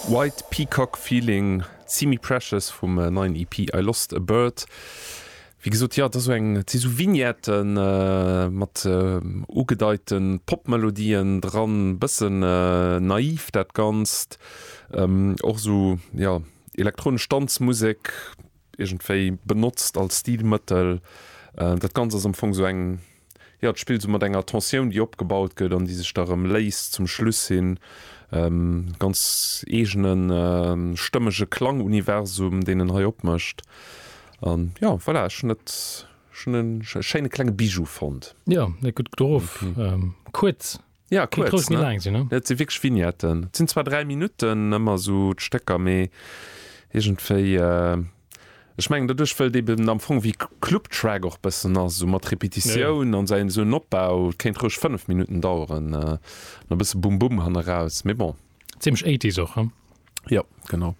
White Peacock Feeling, Simi Precious vum neien EP I Lost A Bird. Wéi gesot, jo, et ass esou eng, et si esou Vignette mat ugedeite Pop-Melodien dran, e bësse naiv dat Ganzt, och esou, jo, elektronesch Danzmusek iergendwéi benotzt als Stilmëttel. Dat Ganzt ass am Fong esou eng, Jo, et spillt esou mat enger Tensioun, déi opgebaut gëtt an déi sech da erëm léist zum Schluss hin. E ganz eegene stëmmege Klanguniversum, deen en hei opmécht. A jo, voilà, ech hunn et schéine klenge Bijou fonnt. Jo, gutt gedoe. Kuerz. Ja kuerz ne, et si wierklech Vignetten, et sinn zwar 3 Minutten ëmmer esou d'Stécker, mee iergendwéi, ech mengen doduerch wëll et eben am Fong wéi Clubtrack och bëssen ass, esou mat Repetitioun an esou en Opbau, et kéint roueg 5 Minutten daueren an e bësse Bum Bum hanneraus, mee bon. Zimmlech Eighties och, hm? Jo, genau.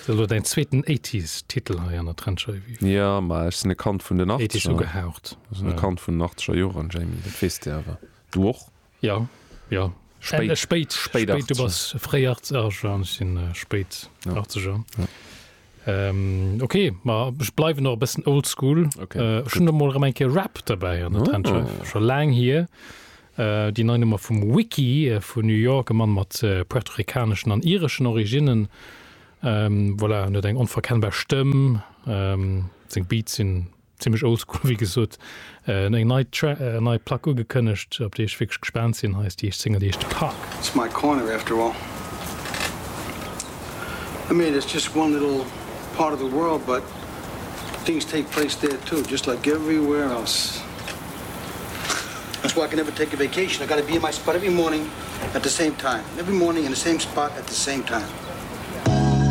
Dat ass elo däin zweeten Eighties-Titel hei an der Trendscheiw-Eve. Jo, ma ech sinn e Kand vun den Achtzeger. Eighties ugehaucht. Ech sinn e Kand vun den Achtegerjoren, Jamie, dat weess de awer. Du och? Jo, jo. Spéit, spéit, spéit 80. Du bass fréi 80 er, jo, ech sinn äh, spéit 80 er. Ja. Ähm, ok, ma ech bleiwen och e bëssen oldschool. Okay, äh, schon da mol eng Kéier Rap dabei an der oh. Trenche. Scho laang hier. Äh, déi nei Nummer vum Wiki äh, vun New York, e Mann mat äh, puerto-ricaneschen an ireschen Originnen. Ähm, voilà, net eng onverkennbar Stëmm. Ähm, seng Beats sinn Zimlech oldschool wéi gesot. Eng nei Plack ugekënnegt op déi ech wierklech gespaant sinn. Hei ass déi éischt Single déi heescht Park. It's my corner after all. I mean it's just one little part of the world but things take place there too just like everywhere else. That's why I can never take a vacation I gotta be in my spot every morning at the same time every morning in the same spot at the same time.